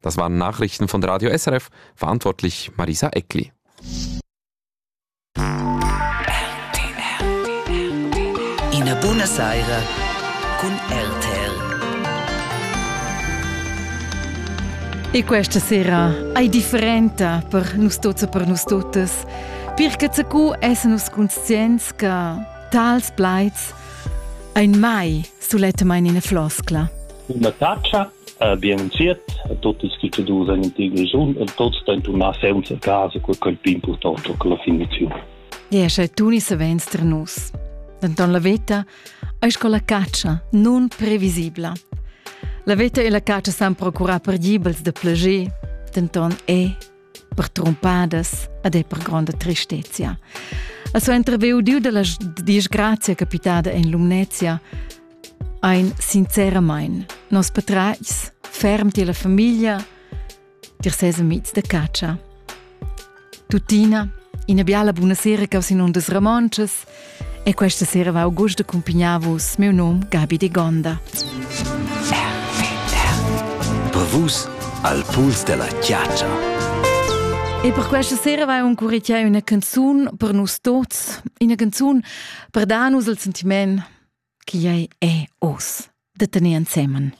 Das waren Nachrichten von Radio SRF, verantwortlich Marisa Eckli. Ina buna saira cun RTL. E questa sera è differente per noi tutti e per noi tutti. Perché cu essenus conscients che tals plaids ein mai solette mai in floscla. Una taccia Bien insiet a tuottas cuschadurs in tia regiun e tots stan turnar sainza casa cur quel più important che la finiziun. Ea, sche tuni savens tra nus. Denton la veta eis con la catscha non previsibla. La veta e la catscha san procurar perdibels de plager, denton è per trompadas ed è per gronda tristezia. A so interveu diu della disgrazia capitada in Lumnezia ein sinceramain nos patratgs ferm ti la famiglia dir ses amics de caccia. Tutina, ina biala buona sera causin undas Ramonces, E questa sera va Augusto Cumpignaus, meu nome Gabi de Gonda. Per vus al puls della chiaccia. E per questa sera vai un curicchia una canzone per nus tuts, una canzone per darnos il sentiment che è e oss de tenere insieme.